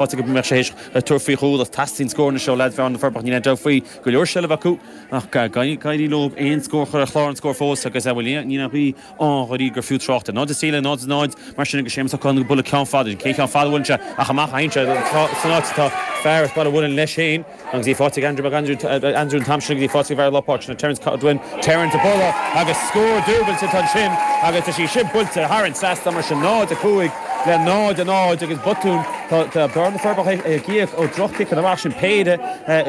Áit go mbeadh sé théis tabhairt faoi dhúthracht, teastaíonn scór anois ó leads Bhearna na Forbacha. Níl aon dabht faoi go leor seilbh acu ach níor éirigh leo aon scór a chur ar chlár an scóir fós agus níl aon fhíorghaire gur fiú trácht air. 0-3 le 0-0 mar sin agus Séamus Ó Catháin ag bualadh ceann fada. Cén cheann fada a bhuaileann sé ach amach san áit atá fear as Baile an Mhuilinn leis féin, Agus í fáighte ag Andrew Mac Aindriú Andrew an t-am sin agus í fáighte i lár na páirce ansin ag Terence Godwin Terence ag bualadh agus scór dúbailte atá ansin agus tá sí sin buailte thar an trasnán mar sin 0-5 le 0-0 agus botún tá tá Bearna na Forbacha ag ag íoc ó drochchiceanna amach sin péire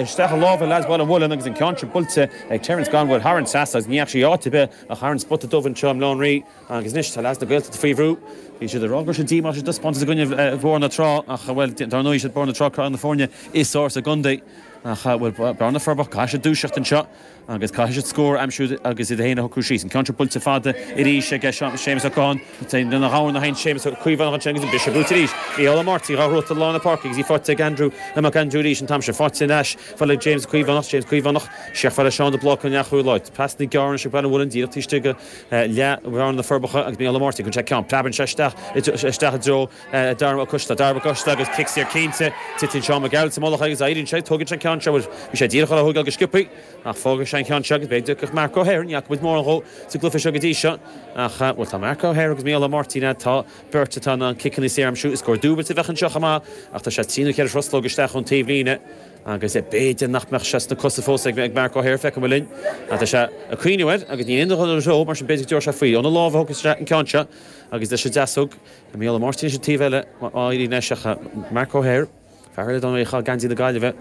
isteach i lámha leads Bhaile an Mhuilinn agus an ceann sin buailte ag Terence Godwin thar an trasnán agus ní raibh sí áit ar bith ach thar an spota dubh anseo i mBleá an Rí. Agus anois tá leads na Gaeltachta faoi bhrú. Bhí siad ag rá go raibh siad díomách as an dtaispeántas i gcoinne Bhóthar na Trá ach, bhuel, dár ndóigh is iad Bóthar na Trá craobh na foirne is ársa sa gcontae. Ach, bhuel, Bearna na Forbacha, caithfidh siad dúiseacht anseo agus caithfidh siad scór a aimsiú agus iad féin a shocrú síos. An ceann seo buailte fada arís ag Séamus Ó Catháin. Lena ghabhann a sheinn Séamus Ó Caomhánach ansin agus an bhris ag brúite arís. Micheál Ó Máirtín dhá throid i lár na páirce agus í fáighte ag Andrew Mac Aindriú arís an t-am seo. Fáighte ar ais fá le James Caomhánach. James Caomhánach, Seiceáil le Seán de Bláca an leath-chúl. Pasanna gearra anois ag Baile an Mhuilinn díreach taobh istigh go. Leath Bhearna na Forbacha agus Micheál Ó Máirtín, Contae Ceann. Preabann sé isteach i dtreo Dara Mac Coisteala. Dara Mac Coisteala agus cic saor cinnte. Titeann Seán Mac Gearailt sa mullach agus éiríonn sé. Tógann sé an ceann seo bhuel, bhí sé díreach ar a thóigeáil go sciopthaí ach fágann sé an ceann seo agus beidh deis ag Marc Ó hEithir, ní fhaca muid mórán dhó sa gcluiche seo go dtí seo ach bhuel tá Marc Ó hEithir agus Micheál Ó Máirtín agat, tá beirt atá in ann ciceanna saor a aimsiú. Scór dúbailte a bheadh anseo chomh maith ach tá sé trí nó ceithre thruslóg isteach ón taobhlíne. Agus b'fhéidir nach mbeadh sé sna cosa fós ag Marc Ó hEithir, feicfimid linn. Ach tá sé ag cuimhneamh air agus níl aon duine ag dul ina threo, mar sin b'fhéidir go dtabharfadh sé faoi. Óna lámh a thógfadh sé an ceann seo agus leis an deasóg ag Micheál Ó Máirtín ón taobh eile dáiríre anois ach Marc Ó hEithir, fear eile a chaith geansaí na Gaillimhe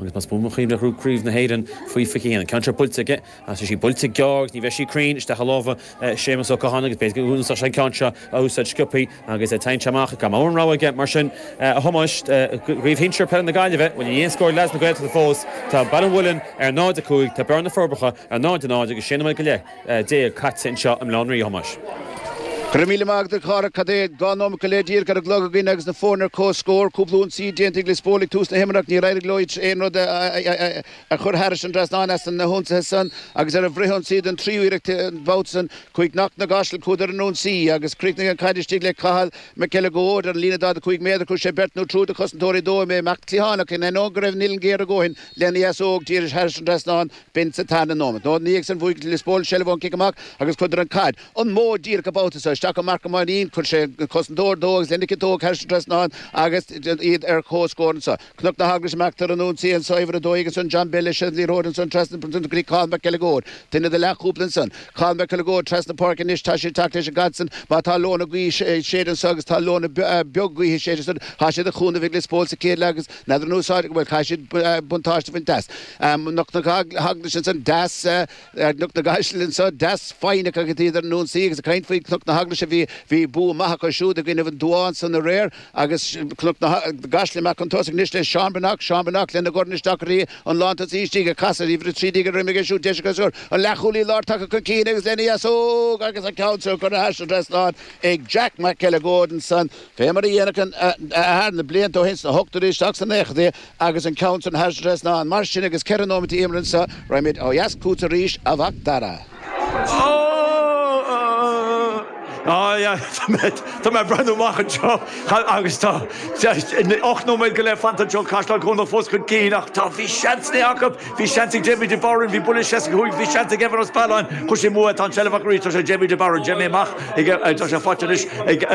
agus más buan mo chuimhne a thug craobh na hÉireann faoi 21. An ceann seo buailte aige ach tá sí buailte gearr agus ní bheidh sí cruinn isteach i lámha Séamus Ó Catháin agus b'fhéidir go bhféadfadh sé an ceann seo a úsáid sciopthaí. Agus é teinnte amach, gan mórán rogha aige, mar sin, a Thomáis, i gCraobh Shinsir peile na Gaillimhe, bhuel níl aon scór ag leads na Gaeltachta fós? Tá Baile an Mhuilinn ar 0-5, tá Bearna na Forbacha ar 0-0 agus sé nóiméad go leith déag caite anseo i mBleá an Rí, a Thomáis. Go raibh míle maith agat, a Chárthaigh. Cad é? Dhá nóiméad go leith díreach ar an gclog againn agus na foirne ar comhscór. Cúpla ionsaí déanta ag Lios Póil ag tús na himeartha ach níor éirigh leo aon rud a A chur thairis an dtrasnán as na hionsaithe san agus ar an bhfrith-ionsaí don tríú iarracht an babhta san? Chuaigh Cnoc na gCaiseal chuadar chun ionsaí agus chríochnaigh an caid istigh le Cathal Mac Uileagóid ar an líne 45 méadar. Chuir sé beirt nó triúr de chosantóirí de, d'imigh amach cliathánach in ainneoin go raibh an uillinn géar a dóthain lena dheasóg. Dhírigh sé thairis an dtrasnán, b'in sa tarna nóimeat. Ina dhiaidh san bhuaigh Lios Póil seilbh ón cic amach agus chuireadar an caid an bóthar díreach an babhta so isteach go Marc Ó Mainnín? Chuir sé an cosantóir de agus lena chiotóg thairis an dtrasnán agus iad ar comhscór ansan. Cnoc na hEaglaise amach ar an ionsaí anso uimhir a dó ansan John Bell leis an liathróid ansan trasna go dtí Cathal Mac Uileagóid duine de Leathchúpla ansan Cathal Mac Uileagóid trasna Páirce Anois tá siad ag teacht leis an gcaid san Má tá leoithne gaoithe ag séideadh anso agus tá leoithne beag gaoithe ag séideadh ansan tá sí de chúnamh ag Lios Póil sa chéad leath agus n'fheadar an úsáid bhuel caithfidh siad buntáiste a bhaint as Cnoc na hEaglaise ansan deas ag Cnoc na gCaiseal anso. Deas foighneach agus iad ar an ionsaí agus ag caint faoi Chnoc na hEaglaise. Bhí, bhí bua maith acu siúd i gcoinnibh an Dubháth ansan aréir agus Cnoc na gCaiseal amach chun tosaigh anois le Seán Breathnach, Seán Breathnach lena dhorn isteach uirthi, an lántosaí istigh ag casadh, uimhir a trí déag ar a dhroim aige siúd, deis acu scór. An leathchúlaí láir tagtha chun cinn agus lena dheasóg agus an ceann seo curtha thairis an trasnán ag Jack Mac Uileagóid ansan. Fé mar a dhéanadh an athair na blianta ó shin sna hochtóidí isteach sna naochadaí, Agus an ceann san thairis an trasnán mar sin agus ceithre nóimeat imeartha anso raghaimid ó dheas chugat arís a Mhac Dara. Tá mé ag breathnú amach anseo agus tá ocht nóiméad go leith fanta anseo, Caisleán Cuanach fós chun cinn ach tá bhí seansanna acu. Bhí seans ag Jamie de Barún, bhí buille 65, bhí seans ag Evan Ó Spealáin, chuir sé amú í, tá an tseilbh acu arís, tá sé ag Jamie de Barún, Jamie amach ag, tá sé faighte anois ag,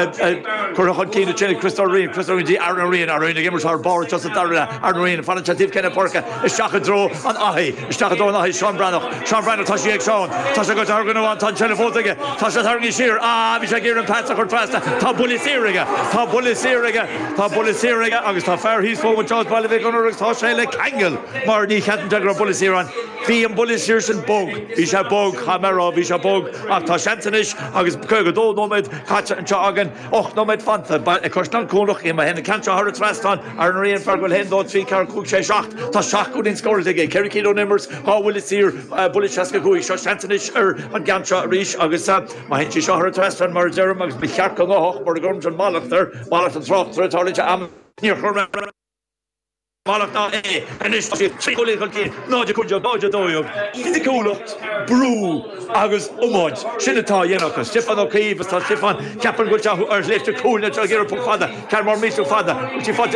curtha chun cinn ansin ag Christo Riain, Christo Riain go dtí Aaron Ó Riain, Aaron Ó Riain ag imirt thar barr anseo sa dara leath, Aaron Ó Riain, fanann sé taobh ceann na páirce, isteach i dtreo an Fhathaigh, isteach i dtreo an Fhathaigh, Seán Breathnach, Seán Breathnach tá sí ag Seán, tá sé go tarraingt amháin, tá an tseilbh fós aige, tá sé tarraingthe siar, ah bhí sé ag iarraidh an pas a chur trasna, tá buille saor aige, tá buille saor aige, tá buille saor aige agus tá fear thíos fúm anseo as Baile Mhic Gonair agus tá sé le ceangal. Mar ní cheapann sé go raibh buille saor ann. Bhí an buille saor sin bog. Bhí sé bog, caithfidh mé a rá, bhí sé bog. Ach tá seans anois agus caoga dó nóiméad caite anseo againn, ocht nóiméad fanta. Beidh Caisleán Cuanach má théann an ceann seo thar an trasnán Aaron Ó Riain fear go bhfuil haon dó trí ceathair cúig sé seacht. Tá seacht gcúilín scóráilte aige, ceithre cinn ón imirt, dhá bhuille saor, buille seasca cúig. Seo seans anois ar an gceann seo arís agus má théann sí seo thar an trasnán mar a deirim agus ba cheart go ngabhfadh mura gcuirimse an mallacht air, mallacht an tráchtaire, tarlaíonn sé amanntaí. Níor chuir mé. Mallacht air, anois tá siad trí chúilín chun cinn, 0 15 le 0 12. Fisiciúlacht, brú agus iomáint, sin atá a dhéanamh acu. Stiofán Ó Caoimh agus tá Stiofán, ceapann go bhfuil sé ar shléibhte cúil, níl sé ag iarraidh puc fada, ceann mór millteach fada, agus tá sí faighte